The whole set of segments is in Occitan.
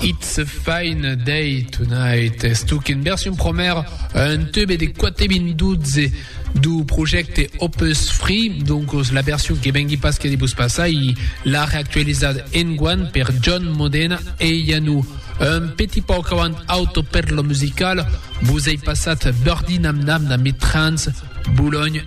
It's a fine day tonight es donc en version promèra un tube de 4 min 12 du projècte Opus Free, donc la version que vengui pas que de vos passar i la reactualizat enguan per John Modena e Yanou. Un petit pauc avant Auto per lo musical, vos ei passat Birdie Nam Nam damb Trans Boulogne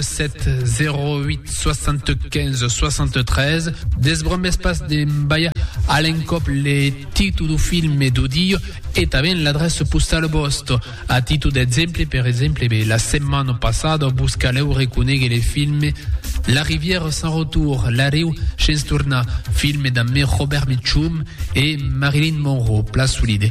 7708653 Desbromes pas d'embalha a l'encòp le titu du filme du diu e tanben l'adressa postala vòsta. A titu d'exemple, per exemple, be, la setmana passada vos calèu reconéguer le filme La rivière sans retour, La riu shens tornar, filme d'ammé Robert Mitchum e Marilyn Monroe, plan solide.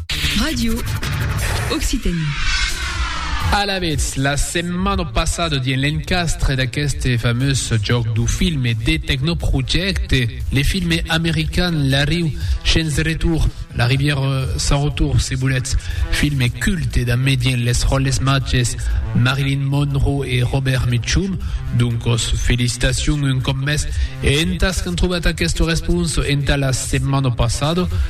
Radio Occitanie. Alavetz, la setmana passada dins l'encastre d'aqueste famós jòc du filme de Tecnoprojecte, le filme american La Riu Chens Retour, La Rivière Sans Retour, se volètz, filme culte de medien les ròles matges Marilyn Monroe e Robert Mitchum, doncos felicitacions un còp més e entas qu'an trobat aquesta responsa entà la setmana passada,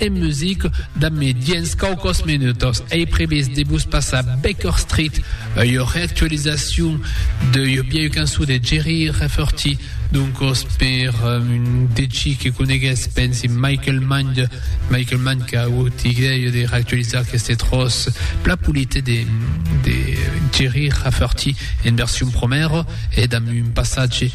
en music damb mi diens quauquòs minutos. Ei previst de vos passar Baker Street, ua reactualizacion d'ua vieu cançon de Jerry Rafferty, doncos per un de chi que conegues, pensi Michael Mann, Michael Mann qu'a agut idèia de reactualizar aqueste tròç plan polit de Jerry Rafferty en version promèra e damb un passatge